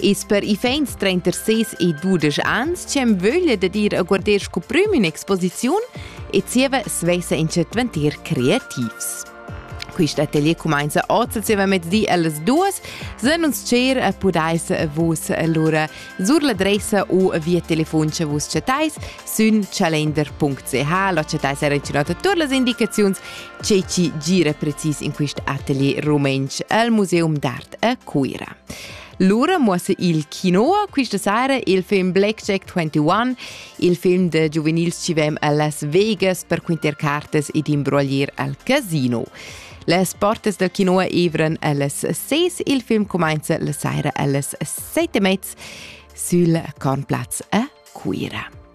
Is per iffaints trenter ses e dudesch ans c'em vöglia da dir a guarder sco prüm in exposiziun e zieva svesa in chat ventir creativs. Quist atelier cumainza oz zieva mezdi allas duas. Sen uns cer e pudais vus allura sur l'adressa u via telefon che vus chatais sün calender.ch la chatais era incinota tur las indicaziuns che ci gira precis in quist atelier rumentsch al Museum d'Art a Cuira. Lura muossa il Quinoa questa sera il film Blackjack 21, il film de giuvenils ci vem a Las Vegas per quinter cartes ed imbroglier al casino. Les portes del Quinoa evran allas 6, il film comincia la sera allas 7 e mezza sul Cornplatz a Cuira.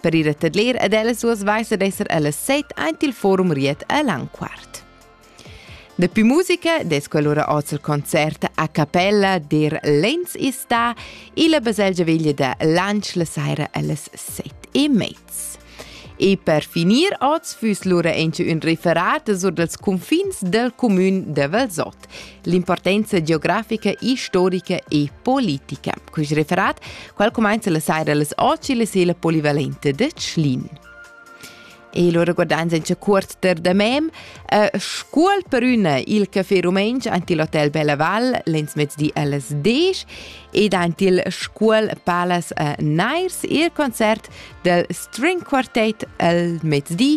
Per ir a tadler ed ellas duas vaisa d'esser ellas set aint il forum Riet a Langquart. Dapi musica des quell'ora oz il concert a cappella der Lenz ista illa baselgia veglia da Lansch la saira allas set e mezz. E per finir oz füss lura enche ün referat sur dals cunfins del comün de Valsot, l'importanza geografica, historica e politica. Quest referat, qual cumenza la saira las 8 e la sela polivalente de Tschlin. E lo regordan senza cuort ter da mem, uh, scuol per üna il café rumentsch ant il hotel Belaval lensmezdi alles 10 ed ant il Scuol Palace a Nairs il concert del String Quartet al mezdi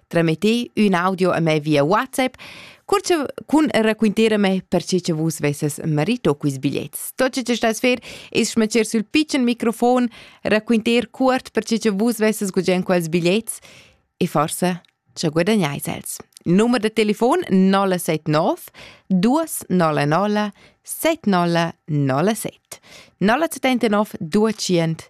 Tramiti ün audio a me via WhatsApp cur che cun raquinterme per che che vus vesses marito quiz biglets. Tot ce stai sfer es schmeccer sul piccen microfon, raquinter cuort per che che vus vesses gugent quels biglets e forse ci guadagnais els. Nummer de telefon 079 299 7097 079 200